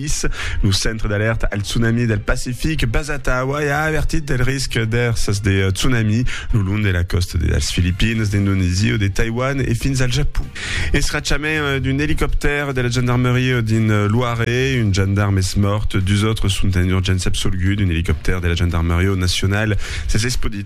Greenpeace, lo Centre d'Alèrta al Tsunami del Pacific basat a Hawaii, a avertit del risc d'èrsas de tsunami lo long de la còsta de las Filipines, d'Indonesia o de Taiwan e fins al Japon. Escrachament d'un elicoptèr de la gendarmeria dins Loire, un gendarm es mòrt, dus autres sont en urgéncia absolguts d'un elicoptèr de la gendarmeria nacional. S'es espaudit.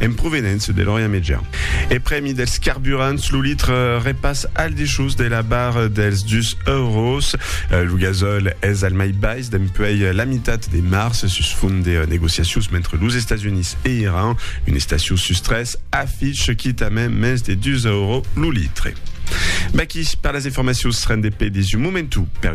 en provenença de l'Orient Mejan. E prèmi dels carburants, lo litre repass al dichús de la barra dels dus euros. Lo gasòl es al mai bais dempuèi la mitat de març sus font de negociacions mentre los Estats Units e Iran, una estacion sus tres, afich quitament mens de dus euros lo litre. Baquí per las informacions rendepedis un momentu per